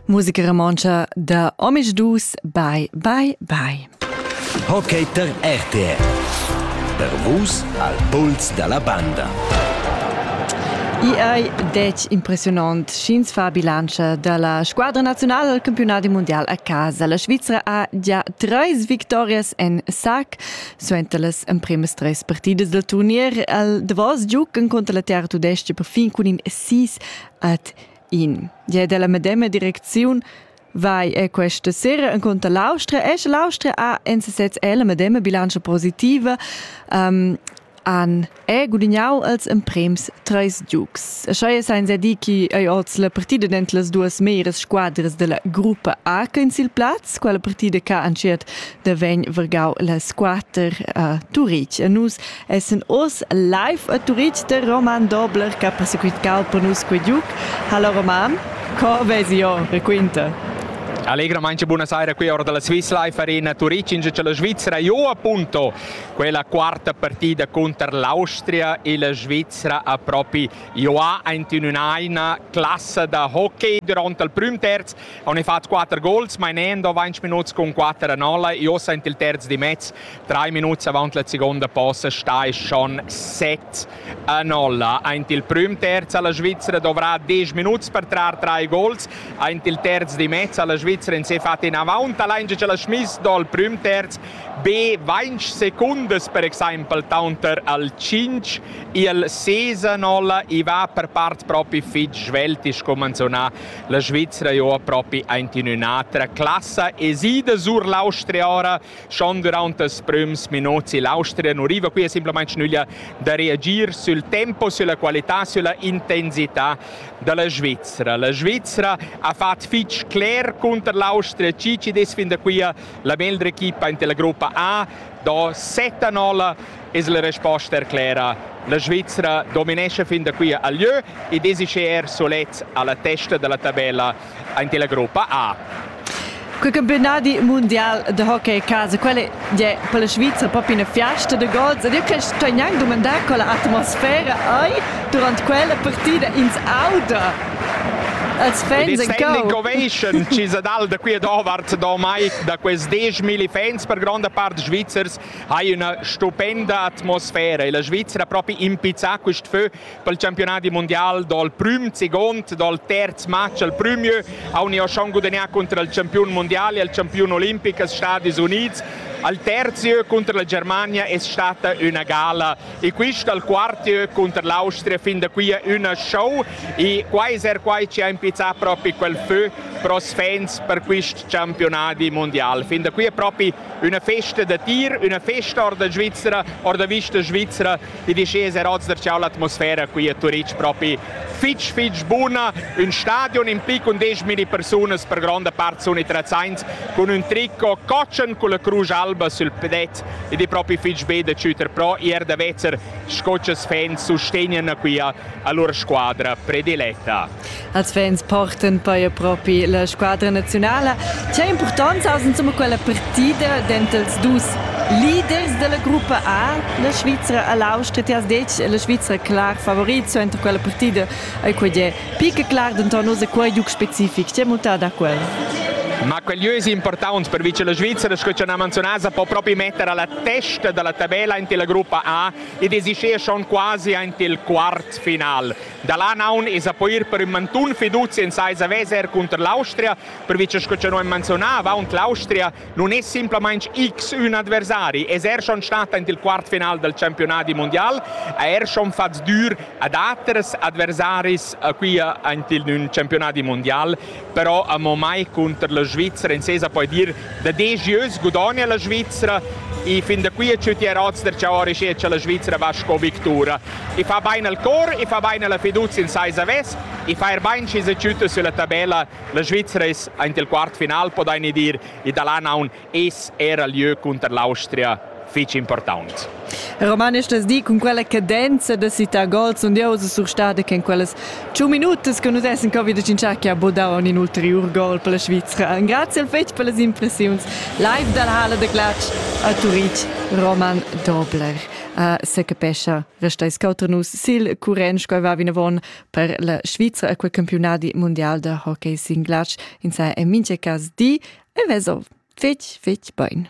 Musica romontscha da Omic Dus, bye, bye, bye. Hockey per RTR. Per vus al puls dalla banda. I è dec impressionant sch'ins fa bilancia dalla squadra nazionale al campionat mondial a casa. La Svizzera ha già treis victorias en sac suenter las empremas tres partidas del turnier. Al Davos giucan contra la Terra Tudesca per fin cun in 6 Ad in di della medema direcziun vai e questa sera inconter l'Austria e sche l'Austria ha en sesez la medema bilancia positiva um, han è gudignau els emprems treis giugs. E schei senza di chi ei oz la partida dentro las duas meras squadras della gruppa A in sil plaz, quella partida che han schiert da vegn vergau las quater a Turich. E nus Essend oz live a Turitg de Roman Dobler che ha persequitau per nus quei giug, ha la Roman, co vesi jo, raquinta. Allegramente buonasera qui ora dalla Swiss Life Arena Turitg in la Svizzera io appunto quella quarta partida contro l'Austria e la Svizzera a propri io ha in una classe da hockey durante il primo terzo ho fatto quattro goals ma in end 20 minuti con 4 a 0 io sento il terzo di mezzo Drei minuts avant la seconda possa stai schon 7 a 0. Aint il prüm terz ha la Svizzera dovrà 10 minuts per trar drei gols. Aint il terz di mezz ha la Svizzera in se fatto in avant allein che la schmiss dal prüm terz be 20 secondas per exempel taunter al 5 il 6 a 0 e va per part propi fitg svelt is come manzona la Svizzera jo propi aint in un'altra classe esida sur l'Austria ora Schon durant els prüms minuts l'Austria non riva qui simplamaing nüglia da reagir sul tempo, sulla qualità, sulla intensità dalla Svizzera. La Svizzera ha fatto fitg cler contro l'Austria Cici des fin da qui la meglra equipa in la gruppa A, do 7 a 0 es la resposta er clera. La Svizzera dominesce fin da qui a lieu e desice er solets alla testa della tabella Aint la gruppa A. Quel campionadi mundial de hockey casa, quelle è per la Svizzera proprio una fiesta de gods ed io quest sto gnanc domandar con la atmosfera hai durant quella partida ins auda als fans en l'incovation ci sa dal da qui e d'ovart da mai da quest 10.000 fans per gronda part svizzers hai una stupenda atmosfera e la Svizzera proprio impizzà quest feu pel campionadi mondial dal prüm segond dal terz match al prümieu hauni ho schon gudagnà cunter il campiun mondial e il campiun olimpic als Stadis Unids al terzieu cunter la Germania es stata üna gala e quist al quartieu cunter l'Austria fin da qui üna show e quai es er quai chi ha impizzà propi quel fö pros fans per quist campionadi mondial. Fin da qui è propi üna festa da tir, üna festa or da Svizzera, or da vista svizera DDC es er oz darcheu l'atmosfera qui a Turitg propi fitg fitg buna. Un stadion in pic con 10.000 persunas per gronda part sun interessaints cun ün tricot cotschen con la crusch alba sül pedet ed è propi fitg be da chüter pro e er da vezzer sco chas fans sustegnan qui a, a lur squadra prediletta. als fans portan poi propi la squadra nazionala. C'è importanza aus insomma quella partida dentels dus leaders della gruppa A, la Svizzera a l'Austria, ti has detg la Svizzera clar favorizzo entro quella partida ai quei è pica clar denton oz quei giuc specific, c'è mutada quella? Ma quegli es importants per vince la Svizzera, sco ci ha menzionato, può proprio mettere alla testa della tabella in la gruppa A ed esice schon quasi in il quart final. Da là naun esa poir per ün mantun fiduzi in saisa veser cunter l'Austria, pervi cha sco cha no am manzionà avaunt l'Austria nun es simplamaing x ün adversari, es er schon stat aint il quart final dal championadi mundial, ha er schon fat sdür ad aters adversaris a qui aint in ün championadi mundial. però amo mai cunter la Svizra. In sesa poi dir da disch ieus gudogna la Svizra e fin da qui a tschüti rots der ciao risché cha la Svizra va sco victura. E fa bain al cor, e fa bain alla fiducia in sai saves, e fa er bain schi se tschüta sulla tabella. La Svizra es aint il quart final, podaini dir, e da là naun eis era lieu cunter l'Austria fetg important. Roman, estas di cun quella cadenza da cità gol sun dieus surstada che in quellas 5 minutas che nus essen covid in che ha bodau un ulterior gol per la Svizzera. Grazie al fetg per las impressiuns live dal Hala de Glatsch a Turitg Roman Dobler. Uh, se capescha restais cauter nus sil curent, coi va vinavon per la Svizra a quel campionadi mundial da hockey sin glatsch in sa en mincha cas di e vezo fetg fetg bain.